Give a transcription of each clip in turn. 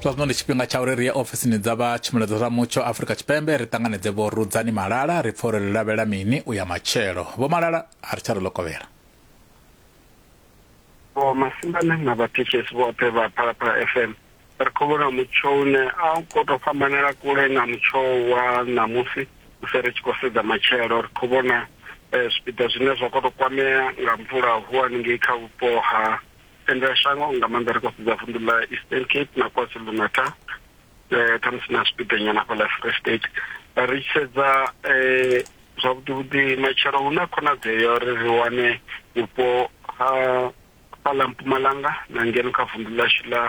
zwa zwino ndi tshifhinga tsha uri ri ye ofisini dza vha tshumelo dza zwa mutsho afrika tshipembe ri ṱanganedze vho rudzani malala ri pfa uri ri lavhelela mini u ya matshelo vho malala a ri tsha ri lokovhela vho masimbana na vhathetshelesi vhoṱhe vha phalaphala fm ri khou vhona mutsho une a u khou tou fhambanela kule na mutsho wa ṋamusi musi ri tshi khou sedza matshelo ri khou vhona eh, zwipiḓa zwine zwa khou tou kwamea nga mvula huhani ngei kha vhupo ha Vhuendelamashango nga maanḓa ri khou sedza vunḓu ḽa Eastern Cape na KwaZulu-Natal eh, khamusi na zwipiḓanyana hafhaḽa Free State ri tshi sedza eh, zwavhuḓi vhuḓi matshelo hu na khonadzeo ya uri ri wane vhupo ha fhaḽa mpumalanga na ngeno kha vunḓu ḽashu ḽa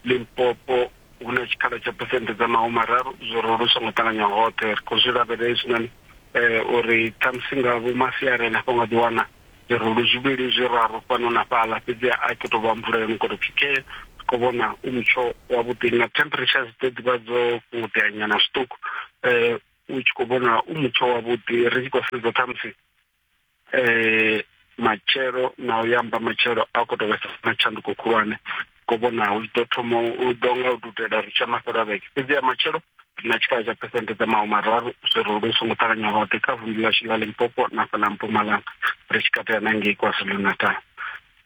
limpopo hu na tshikhala tsha phesenthe dza mahumararu zwo ro lu songo ṱanganya hoṱhe ri khou zwi lavhelela hezwinoni um uri khamusi nga vhomasiari henefho nga ḓiwana zwirulu zwivhili zwiraru fhano na fhaḽa fhedzi a i tou vha mvula yo no khou tou pfhi khee khou vhona u mutsho wavhuḓi na temperature dzi ḓo ḓivha dzo fhungudzea nyana zwiṱuku um u tshi khou vhona u mutsho wavhuḓi ri tshi khou sedza ṱhamusi um matshelo na u ya mbamatshelo a khou tou vhesa na tshanduko khulwane ko vhonaho zwi ḓo thoma u ḓo nga u dudela ri tsha mafhelo a vhege fhedzi ya matshelo na tshikhala tsha phesente dza maho mararu zwi ro lu songo ṱanganya hoṱhe kha vundu ḽashu ḽa limpopo na fhaḽa mpumalanga ri tshi katela na ngei kwazulu natal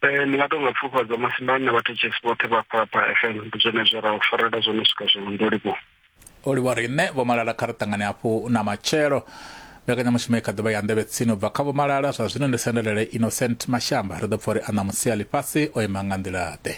um ndi nga tou nga pfufhadza masimbani na vhathetshelesi vhoṱhe vha phalaphala fm ndi zwone zwe ra u farela zwone swika zwivhundolivhuwa O livhuwa riṋe Vho Malala kha ri ṱangane hafhu na matshelo. Mbekanyamushumo i kha ḓivha ya nḓevhe tsini u bva kha Vho Malala zwa zwino ndi Sendelele Innocent Mashamba ri ḓo pfa uri a ṋamusi a ḽifhasi o ima nga nḓila ḓe.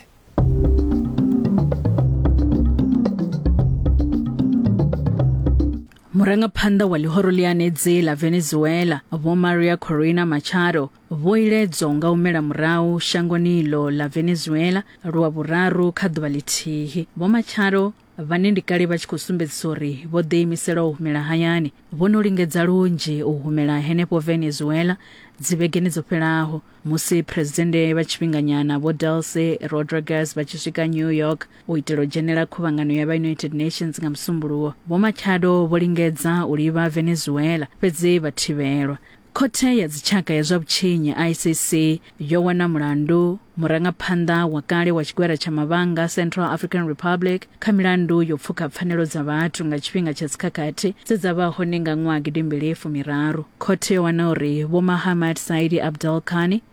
Murangaphanḓa wa ḽihoro ḽi anedzi ḽa Venezuela Vho Maria Corina Machado vho iledzwa nga u mela murahu shangoni iḽo ḽa Venezuela lwa vhuraru kha ḓuvha ḽithihi. Vho Machado vhane ndi kale vha tshi khou sumbedzisa uri vho ḓiimisela u humela hayani, vho no lingedza lunzhi u humela henefho Venezuela dzivhegeni dzo fhelaho musi Phresidennde vha tshifhinganyana Vho Delcy Rodriguez vha tshi swika New York u itela u dzhenela khuvhangano ya vha United Nations nga Musumbuluwo. Vho Machado vho lingedza u livha Venezuela fhedzi vha thivhelwa. Khothe ya Dzitshaka ya zwa Vhutshinyi, ICC, yo wana mulandu murangaphanḓa wa kale wa tshigwera tsha mavhanga Central African Republic kha milandu yo pfuka pfanelo dza vhathu nga tshifhinga tsha dzikhakhathi dze dza vha hone nga ṅwaha gidimbili fumiraru. Khothe yo wana uri Vho Mahamat Saidi Abdel Kani,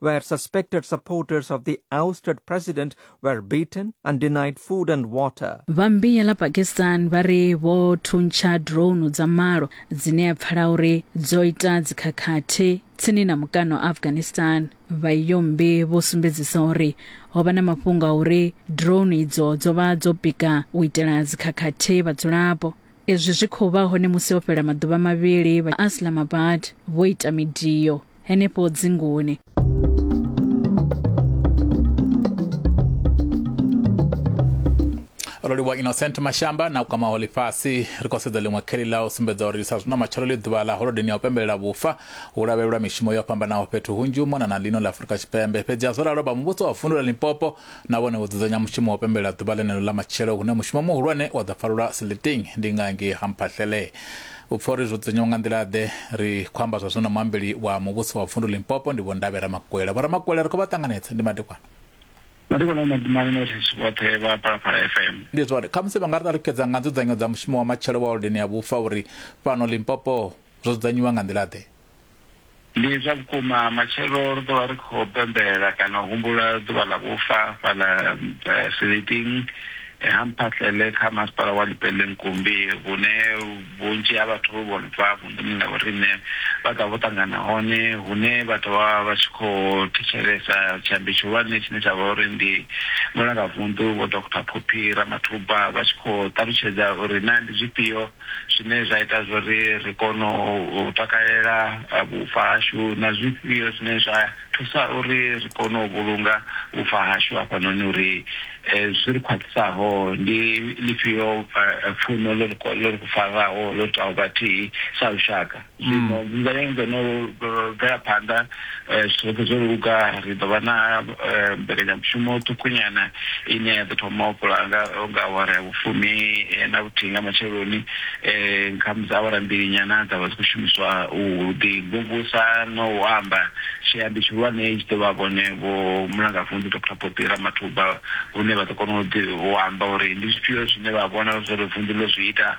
where suspected supporters of the ousted president were beaten and denied food and water. vha mbiya ḽa pakistan vha ri vho thuntsha drone dza malo dzine ya pfala uri dzo ita dzikhakhathi tsini na mukano wa afghanistan vha iyo mmbi vho sumbedzisa uri ho vha na mafhungo a uri drone idzo dzo vha dzo pika u itela dzikhakhathi vhadzulapo izwi zwi khou vha hone musi ho fhela maḓuvha mavhili vha islamabad vho ita midio henefho dzingoni roliwa innocent mashamba na kwama wa ḽifhasi ri khou sedza ḽiṅwe kheli ḽa u sumbedza uri sa zwino matshelo ḽi ḓuvha ḽa holodeni ya u pembelela vhufa hu lavhelelwa mishumo yo fhambanaho fhethu hunzhi u mona na ḽino ḽa afurika tshipembe fhedzi a zwo ralo vha muvhuso wa vundu la limpopo Na vhone vho dzudzanya mushumo wa u pembelela ḓuvha ḽeneḽo ḽa matshelo hune mushumo muhulwane wa ḓo pfalulwa Seleting, ndi nga ngei ha Mphahlele. U pfa uri zwo dzudzanywa nga nḓila-ḓe, ri khou amba zwa zwino muambeli wa muvhuso wa vundu Limpopo ndi Vho Ndavhe Ramakwela. Vho Ramakwela ri khou vha ṱanganedza, ndi madekwana. Madekwana a maḓumane na zwitshitshi vhoṱhe vha Phalaphala FM. Ndi zwone, khamusi vha nga ri ṱalutshedza nga nzudzanyo dza mushumo wa matshelo wa holodeni ya vhufa uri fhano Limpopo zwo dzudzanyiwa nga nḓila-ḓe? Ndi zwa vhukuma, matshelo ri ḓo vha ri khou pembela kana u humbula ḓuvha ḽa vhufa fhaḽa Siliting ha Mphahlele kha masipala wa Lepelle-Nkumbi hune vhunzhi ha vhathu vho no bva vunḓuni ḽa vhoriṋe vha ḓa vho ṱangana hone, hune vha ḓo vha vha tshi khou thetshelesa tshiambi tshihulwane tshine tsha vha uri ndi Mulangavunḓu Vho Doctor Phophi Ramathuba vha tshi khou ṱalutshedza uri naa ndi zwifhio zwine zwa ita zwo ri ri kono u takalela vhufa hashu na zwifhio zwine zwa thusa uri ri kono u vhulunga vhufa hashu hafhanoni uri zwi ri khwaṱhisaho ndi ḽifhio pfuno ḽo ri faraho ḽo ri itaho vhathihi sa lushaka. zwino nzulele dzo no bvela phanḓa zwithu zwoṱhe zwo luga ri ḓo vha na mbekanyamushumo ṱhukhunyana ine ya ḓo thoma u pula nga nga awara ya vhufumi na vhuthihi nga matsheloni khamusi dza awara mbili nyana dza vha dzi khou shumiswa u ḓi mvumvusa na u amba tshiambi tshihulwane tshi ḓo vha vhone vho mulangavunḓu dr popi ramathuba hune vha ḓo kona u ḓi u amba uri ndi zwifhio zwine vha vhona zwo ri vunḓu ḽo zwi ita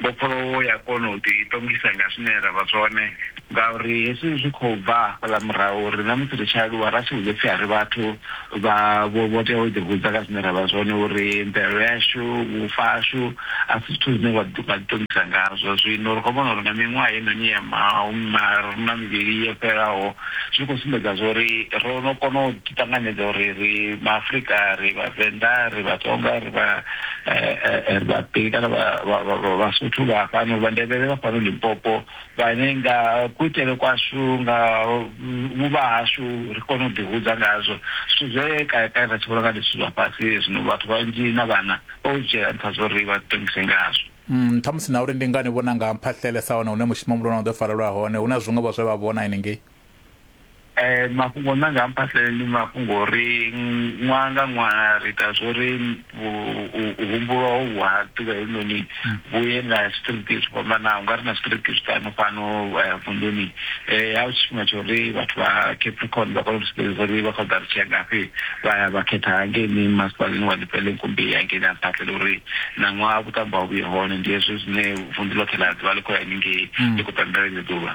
Mbofholowo ya kona u ḓiṱongisa nga zwine ra vha zwone, ngauri hezwi zwi khou bva hafhaḽa murahu uri na musi ri tshi aluwa ra tshi vhudzwa u pfi a ri vhathu vha vho vho tea u ḓivhudza nga zwine ra vha zwone uri mvelelo yashu, vhufa hashu a si zwithu zwine vha vha ḓiṱongisa ngazwo. Zwino ri khou vhona uri nga miṅwaha heinoni ya mahumi na mivhili yo fhelaho zwi khou sumbedza zwa uri ro no kona u ḓiṱanganedza uri ri MaAfrika, ri Vhavenḓa, ri Vhatsonga, ri vha. vhapeli kana vhasuthu vha fhano vhandevhele vha fhano limpopo vhane nga kuitele kwashu nga vhuvha hashu ri kone u ḓihudza ngazwo zwithu zwe kale kale ra tshi vhona nga ndi zwithu zwa fhasi zwino vhathu vhanzhi na vhana vha u dzhiela nṱha zwo ri vha ḓiṱongise ngazwo mm, ṱhamusi na uri ndi ngani vhona nga mphahlelesa hone hune mushumo mulwana u ḓo farelwa hone hu na zwiṅwe vho zwe vha vhona henengei Eh mafhungo na nga mphahlele ndi mafhungo uri ṅwaha nga ṅwaha ri ita zwori u humbulwa ho wa ḓuvha helinoni vhuye nga zwiṱiriki zwi fhambanaho nga ri na zwiṱiriki zwiṱanu fhano vunḓuni eh ha tshifhinga tsho uri vhathu vha Capricorn vha kone u sibeleza uri vha khou ḓa ri tshi ya ngafhi vha ya vha khetha hangeini masipalani wa ḽifhele nkumbi hangeini a mphahlele uri na ṅwaha vhuṱambo ha vhuye hone ndi hezwi zwine vunḓu ḽoṱhe ḽa ḓivha ḽi khou ya haningei ḽi khou pembelela ḓuvha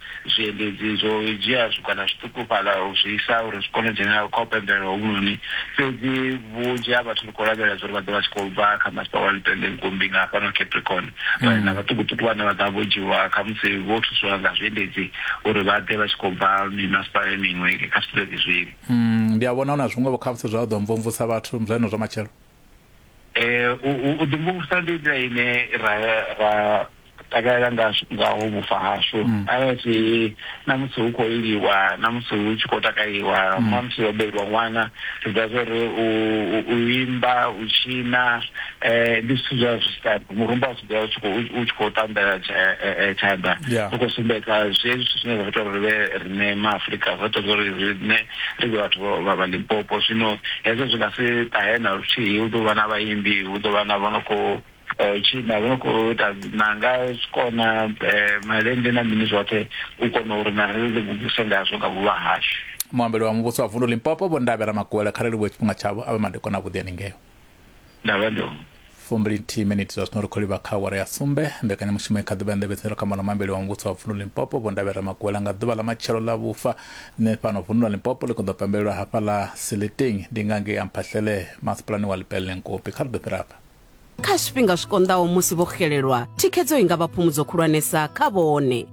Zwiendedzi zwo dzhia zwigwada zwiṱuku fhaḽa u zwi isa uri zwi kone u dzhenelela kha u pembelela hovhunoni, fhedzi vhunzhi ha vhathu ri khou lavhelela zwa uri vha ḓe vha tshi khou bva kha masipala wa Ḽitendengumbi nga hafhano Capricorn vhare na vhaṱukuṱuku vhane vha ḓo vha vho dzhiiwa khamusi vho thuswa nga zwiendedzi uri vha ḓe vha tshi khou bva mimasipalani miṅwe kha zwiṱiriki zwine. Ndi a vhona hu na zwiṅwevho khamusi zwa u ḓo mvumvusa vhathu zwenezwo zwa matshelo. eh u u- u ḓi mvumvusa ndi nḓila ine ra ra takalela nga ngaho vhufa hashu arati na musi hu khou iliwa na musi hu tshi khou takaliwa na musi ho beliwa ṅwana ri ḓa zwa uri u u- u imba u tshina eh ndi zwithu zwa zwi sa murumba u tshi khou u tshi khou tambela tshanḓa u khou sumbedza zwezwi zwithu zwine zwa ita uri vhe riṋe maafurika zwa ita uri riṋe ri vhe vhathu vha vha limpopo zwino hezwo zwi nga si ṱahe na luthihi hu ḓo vha na vhaimbi hu ḓo vha na vho no khou tshina vho no khou ita nanga zwikona malende na mini zwoṱhe u kona uri na ri ḓi mvumvuse ngazwo nga vhuvha hashu muambeli wa muvhuso wa vundu limpopo vho ndavhela makuwela kha ri livhuwe tshifhinga tshavho a vhe madekwana avhuḓi haningeo nda vha ndo fumbilinthihi miniti zwa zwino ri khou livha kha awara ya sumbe mbekanyamushumo i kha ḓivha ndevhedzelo kha mala mambeli wa muvhuso wa vundu limpopo vho ndavhera makuwela nga ḓuvha ḽa matshelo ḽa vhufa ne fhano vundu la limpopo ḽi khou ḓo pembelelwa hafha ḽa siliting ndi nga ngei amphahlele masipulani wa lipelele nkopi kha ri ḓo fhira afha kha zwifhinga zwi konḓaho musi vho xelelwa thikhedzo i nga vha phumudzo khulwanesa kha vhone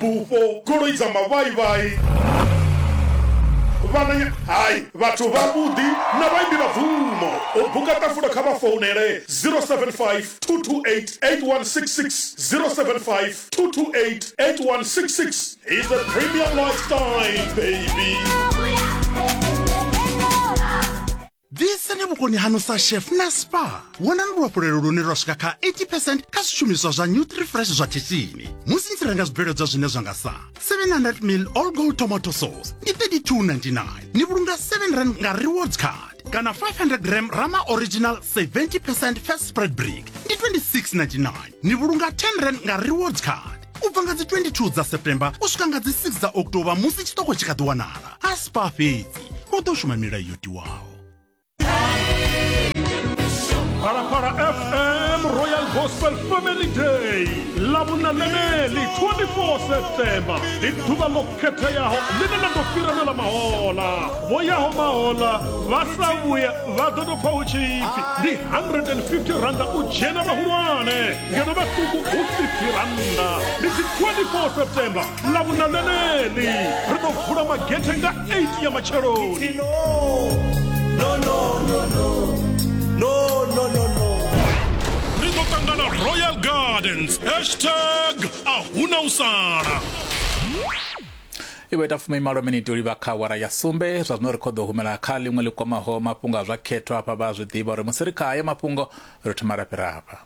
Bufho, goloi dza mavhaivhai, vhananya, hai, vhathu vhavhuḓi na vhaimbi vha bvumo. U buka ṱafula kha vha founele 0752288166, 0752288166. He's a premium lifestyle baby. ḓisani vhukoni hanu sa chef na spa wonani luhafhulelo lune lwa swika kha 80 percent kha zwishumiswa zwa new three fresh zwa khishini musi ni tshi renga zwibveledzwa zwine zwa nga sa 700 mil all gold tomato sauce ndi 3299 ni vhulunga 7 rand nga rewards card kana 500 gram rama original 70 percent fast spread brick ndi 2699 ni vhulunga 10 rand nga rewards card u bva nga dzi 22 dza september u swika nga dzi 6 dza october musi tshiṱoko tshi kha ḓi wanala a spa fhedzi u ḓo shuma milayo yo tiwaho Parapara FM Royal Gospel Family Day. La Bunanene, 24 September. It's to the khetheaho ḽine ḽa ḓo fhira na ḽa mahola vho yaho mahola vha sa vhuya vha ḓo tou pfa hu tshi pfi ndi 150 randa u dzhena vhahulwane ngeno vhaṱuku hu 50 randa ndi dzi 24 september ḽa vhuna ḽeneḽi ri ḓo vula magethe nga 8 ya matsheloni no, no, no, no, no. No, no, no, no. ri ḓo ṱangana royal gardens hashtag a huna u sala i vho ita fumimalo miniti u livha kha wara ya sumbe zwa zwino ri khou ḓo humela kha ḽiṅwe ḽi kwamaho mafhungo a zwa khetho hafha vha zwi ḓivha uri musi ri kha hayo mafhungo ri thoma ra fhira hafha